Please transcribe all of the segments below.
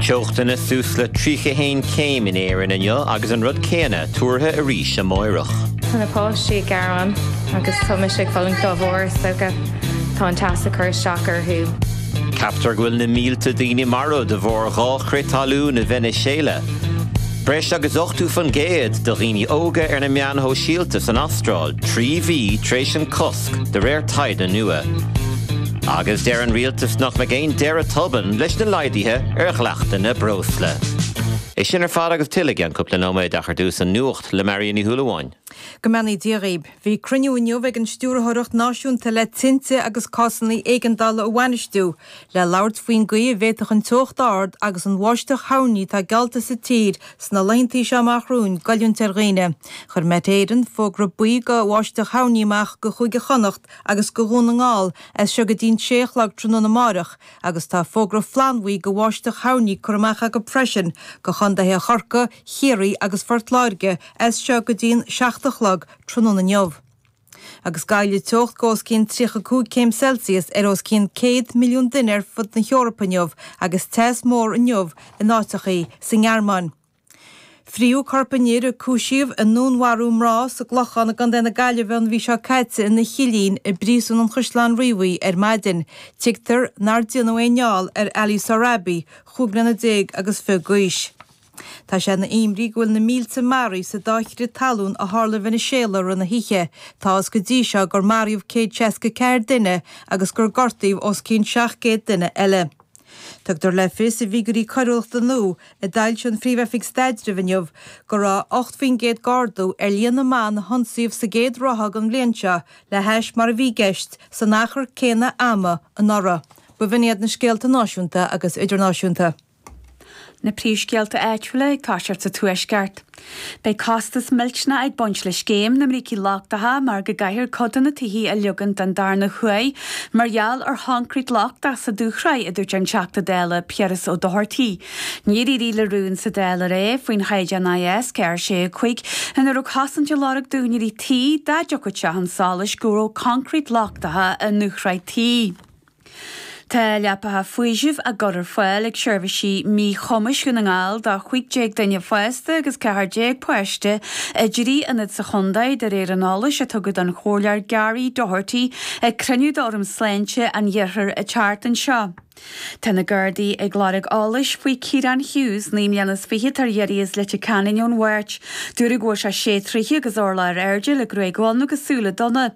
Teochtanna suas le 31 céim in Éirinn inniu agus an rud céanna tuartha arís amáireach. Tá na páistí ag gearán agus tá mise ag fulaingt dá bharr, is dócha. Tá an teas ag cur isteach orthu. Ceaptar go bhfuil na mílte daoine marbh de bharr dhá chrith talún i Veiniséala. Breis agus 80% de dhaoine óga ar na meáin shóisialta san Astráil trí mhí tar éis an de réir taighde nua. Agus deir an rialtas nach mbeidh aon deireadh tobann leis na laghdaithe ar dhleachtanna breosla. É sin ar fad agus tuilleadh i gceann cúpla nóiméad ach ar dtús an nuacht le Marian Ní Shúilleabháin. Go mbeannaí Dia dhaoibh. Bhí cruinniú inniu ag an Stiúrthóireacht Náisiúnta le Tinte agus Cásanna Éigeandála a Bhainistiú le labhairt faoin gcaoi a bhféadfadh an teocht ard agus an bháisteach thoirní atá geallta sa tír Sna laethanta seo amach romhainn, goilliúint ar dhaoine. Chuir Met Éireann fógra buí go bháisteach thoirní amach go Cúige Chonnacht agus go Dhún na nGall as seo go dtí'n sé a chlog tráthnóna amáireach agus tá fógra flannbhuí go bháisteach thoirní curtha amach acu freisin go chondaetha Chorcaí, Chiarraí agus Phort Láirge as seo go dtí'n seacht a chlog tráthnóna inniu. Agus gealladh teocht go os cionn 35 céim Celsius ar os cionn 100 milliún duine ar fud na hEorpa inniu agus teas mór inniu in áiteachaí sa nGearmáin. Fríothadh corp an fhir a cúisíodh i ndúnmharú mná sa gClochán i gContae na Gaillimhe an mhí seo caite ina chillín i bPríosún an Chaisleáin Riabhaigh ar maidin. Tuigtear nár déanadh aon fheall ar Ali Sohrabi, chúig bliana déag agus fiche d'aois. Tá sé ina imní go bhfuil na mílte maraithe sa dá chrith talún a tharla i Veiniséala rith na hoíche. Tá a fhios go dtí seo gur maraíodh céad seasca ceathair duine agus gur gortaíodh os cionn seacht gcéad duine eile. Tugtar le fios i bhfigiúirí coiriúlachta nua a d'fhoilsigh an Phríomh-Oifig Staidrimh inniu go raibh ocht faoin gcéad d'ardú ar líon na mban a hionsaíodh sa gcéad ráithe den bhliain seo le hais mar a bhí i gceist san achar céanna ama anuraidh. B'in iad na scéalta náisiúnta agus idirnáisiúnta. Na príomhscéalta áitiúla ag toiseacht sa Tuaisceart. Beidh costas millteanach ag baint le scéim na mbrící lochtacha mar go gcaithfear cuid de na tithe a leagan don darna huair mar gheall ar choncrete lochtach sa dúshraith, a dúirt an Teachta Dála Piaras Ó Dochartaigh. Níor éirigh le rún sa Dáil aréir faoin Chaighdeán IS 465 ina raibh cosaint á lorg d'úinéirí tí dá dtiocfadh sé chun solais go raibh concrete lochtacha i ndúshraith tí. Tá leapacha faoisimh á gcur ar fáil ag Seirbhísí Míchumais Dhún na nGall do 15 duine fásta agus 14 páiste i dtrí ionad sa chontae, de réir an eolais a tugadh don Chomhairleoir Gary Doherty ag cruinniú d'Fhóram Sláinte an Iarthair an tseachtain seo. Tá na Gardaí ag lorg eolais faoi Kieran Hughes, naoi mbliana is fiche, atá ar iarraidh as Leitir Ceanainn ón Mháirt. Dúradh go bhfuil sé sé troithe agus orlach ar airde le gruaig dhonn agus súile donna.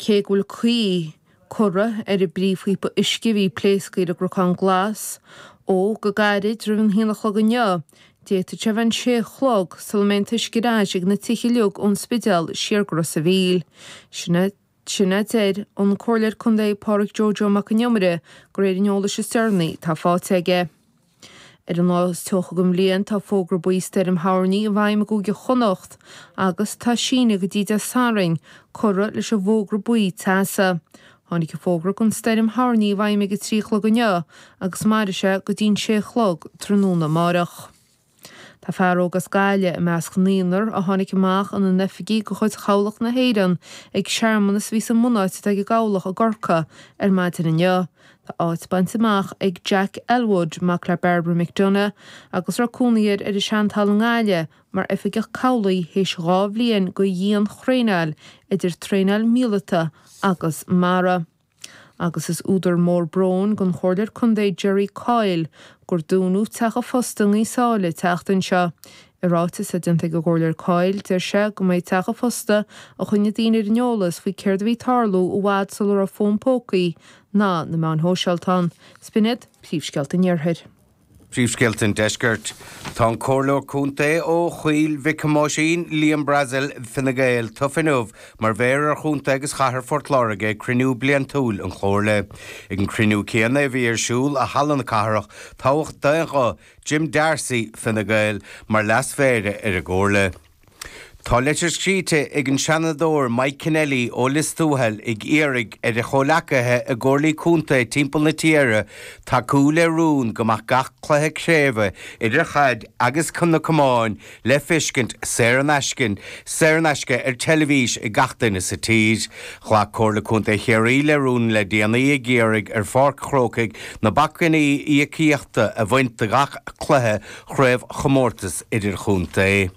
Cé go bhfuil caoi curtha ar an bpríomhphíopa uisce a bhí pléasctha ar an gCrocán Glas ó go gairid roimh an haon a chlog inniu, d'fhéadfadh sé a bheith an sé a chlog sula mbeidh an t-uisce ar ais ag na tithe uilig ón Spidéal siar go Ros a' Mhíl. Nó sin a deir an Comhairleoir Contae Pádraig Joe Joe Mac an Iomaire de réir an eolais is deireanaí atá fáilte aige. Ar an lá is teocha den bhliain, tá fógra buí stoirm thoirní i bhfeidhm i gCúige Chonnacht agus tá síneadh go dtí Dé Sathairn curtha leis an bhfógra buí teasa. Tháinig an fógra don stoirm thoirní i bhfeidhm ag a trí a chlog inniu agus mairfidh sé go dtí'n sé a chlog tráthnóna amárach. Tá fear óg as Gaillimh i measc an naonúr a tháinig amach ina n-oifigigh de chuid Chabhlach na hÉireann ag searmanas a bhí sa mbunáit atá ag an gCabhlach i gCorcaigh ar maidin inniu. Tá áit bainte amach ag Jack Elwood, mac le Barbara McDonagh, agus a raibh cónaí air ar an seanTalamh i nGaillimh mar oifigeach cabhlaigh théis dhá bhliain de dhianthraenáil idir traenáil mhíleata agus mara. Agus is údar mór bróin don Chomhairleoir Contae Gerry Coyle gur dúnadh teach an phoist i nGaoth Sáile an tseachtain seo I ráiteas atá déanta ag an gComhairleoir Coyle, deir sé go mba é teach an phosta a choinneodh daoine ar an eolas faoi céard a bhí ag tarlú i bhfad sula raibh fón pócaí ná na meáin shóisialta ann. Sin iad, Príomhscéalta an Iarthair. Príomhscéalta an Deiscirt. Tá an Comhairleoir Contae ó Choill Mhic Thomáisín, Liam Brazil, Fine Gael, tofa inniu mar Mhéara ar Chontae agus Chathair Phort Láirge ag cruinniú bliantúil an Chomhairle. Ag an cruinniú céanna a bhí ar siúl i Halla na Cathrach, toghadh d'aon ghuth, Jim Darcy, Fine Gael, mar leasmhéara ar an gComhairle. Tá leitir scríte ag an Seanadóir Mike Kennelly ó Lios Tuathail ag iarraidh ar a chomhleacaithe i gcomhairlí contae timpeall na tíre tacú le rún go mbeadh gach cluiche craoibhe, idir chaid agus iomáin, le feiscint saor in aisce, saor in aisce ar teilifís ag gach duine sa tír. Ghlac Comhairle Contae Chiarraí le rún le déanaí ag iarraidh ar Pháirc an Chrócaigh na bacainní íocaíochta a bhaint de gach cluiche chraobhchomórtas idirchontae.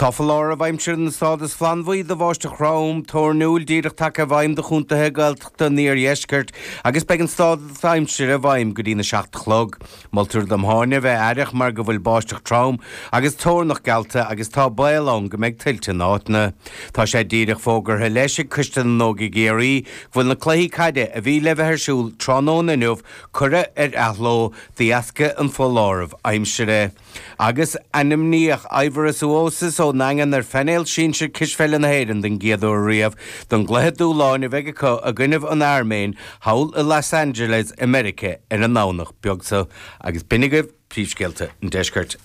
Tá foláireamh aimsire den stádas flannbhuí do bháisteach throm, thoirniúil díreach tagtha i bhfeidhm do chontaetha Gaeltachta an iardheiscirt agus beidh an stádas aimsire i bhfeidhm go dtí'n 7 a chlog. Moltar do mhuintir a bheith aireach mar go bhfuil báisteach trom agus tóirneach geallta agus tá baol ann go mbeidh tuilte in áiteanna. Tá sé díreach fógartha leis ag Coiste na nÓg i gCiarraí go bhfuil na cluichí caide a bhí le bheith ar siúl tráthnóna inniu curtha ar athló de dheascaibh an foláireamh aimsire agus ainmníodh Aivaras Uosis ón nDaingean ar phainéal sinsir cispheile na hÉireann don gcéad uair riamh don gcluiche dúshláin a bheidh acu i gcoinnibh an Airméin thall i Los Angeles i Meiricea ar an nDomhnach beag so, agus b'in agaibh príomhscéalta an Deiscirt.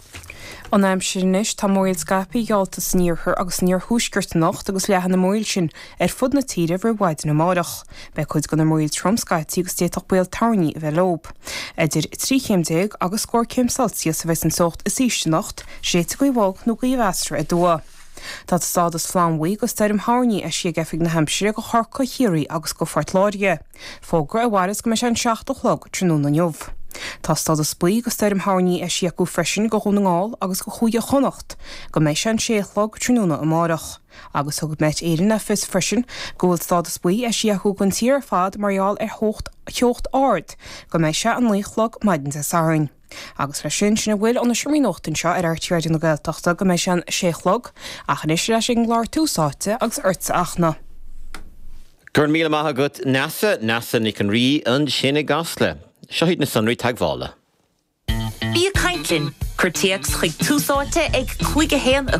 An aimsir anois, tá múraíl scaipthe geallta san iarthar agus san iarthuaisceart anocht agus leathfaidh an mhúraíl sin ar fud na tíre roimh mhaidin amáireach. Beidh cuid den mhúraíl trom scaití agus d'fhéadfadh baol toirní a bheith leob. Idir trí chéim déag agus scór céim Celsius a bheas an teocht is ísle anocht, séidfidh gaoth bhog nó gaoth mheasartha aduaidh. Tá stádas flannbhuí go stoirm thoirní eisithe ag Oifig na hAimsire go Chorcaigh, Chiarraí agus go Phort Láirge, fógra a mhairfeas go mbeidh sé an seacht a chlog tráthnóna inniu. Tá stádas buí go stoirm thoirní eisithe acu freisin go Dhún na nGall agus go Chúige Chonnacht, go mbeidh sé an sé a chlog tráthnóna amárach. Agus thug Met Éireann le fios freisin go bhfuil stádas buí eisithe acu don tír ar fad mar gheall ar theocht ard, go mbeidh sé an naoi a chlog maidin Dé Sathairn. Agus leis sin, sin a bhfuil ón seomra nuachta anseo ar RTÉ Raidió na Gaeltachta go mbeidh sé an sé a chlog, ach anois ar ais ag an gclár Tús Áite agus ortsa a Fhachtna. Go raibh míle maith agat Neasa, Neasa Nic an Rí ansin i gCasla. Seo iad na sonraí teagmhála. Bí ag caint linn! Cuir téacs chuig Tús Áite a cúig, a haon, a.